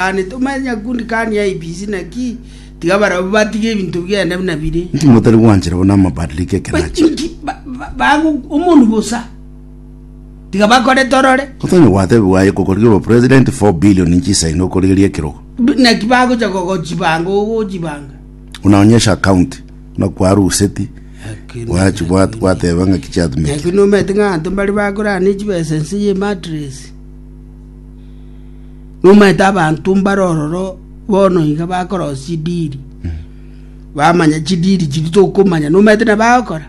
Aane tomanye nyakundi kani IEBC naki, tiga barabwo batige ebinto biane buna bire. Motari gwanchera buna amabadiliko ekenachi. Inki ba- ba- bago omonu bosa, tiga bakore torore. Otonya gwatebigwa aye kokorigera obo president 4 billion inchi isaino okorigeria ekirogo. B- Naki bagocha kogochibanga ogochibanga. Unaonyesha account na kwaruseti wachi gwat- gwateba ng'aki chiatumete. Naki nomete ng'a anto mbare bakorane chibesa ense ye matres. Nomanyete abanto mbare ororo bono iga bakorosia chidiri, bamanya chidiri chiria tokomanya, nomanyete na bagokora?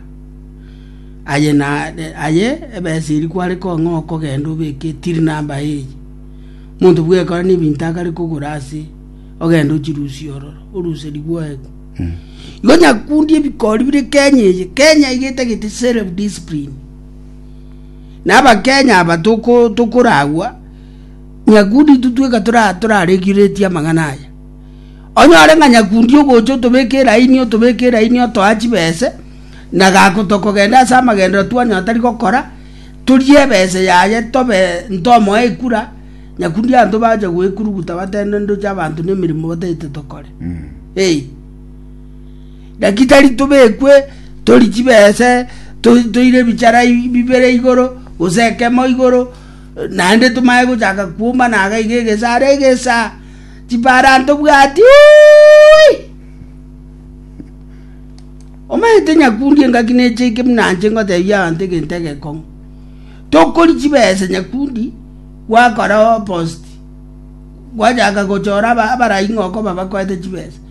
Aye nare aye ebesa eria kware kong'a okogenda obeke till number eye, omonto bwekora na ebinto akare kogora ase ogende ochirusie ororo, oruse ribwogo igo nyakundi ebikori bire Kenya eye, Kenya iga etagete self discipline. Na Abakenya aba tokoragwa nyakundi totweka torareguretie amang'ana aya. Onyore ng'a nyakundi ogocha otobeke elaini otobeke elaini otoa chibese na gako tokogenda ase amagenderero twanyora tari gokora torie ebese yaye tobe ntomoe ekura nyakundi abanto bacha goekuruguta batebana ndoche abanto nemeremo batagete tokore. Eei. Naki tari tobekwe tori chibese toire ebichara bibere igoro, gose ekemo igoro, naende tomanye gochaka kwombana iga iga egesa are egesa. Chipara ntobwati uuii. Omanyete nyakundi engaki necheike buna inche ngotebia abanto egento egekong'u. Tokori chibese nyakundi, gwakora opposite. Gwachaka gochora abaraia ng'a okoba bakoete chibesa.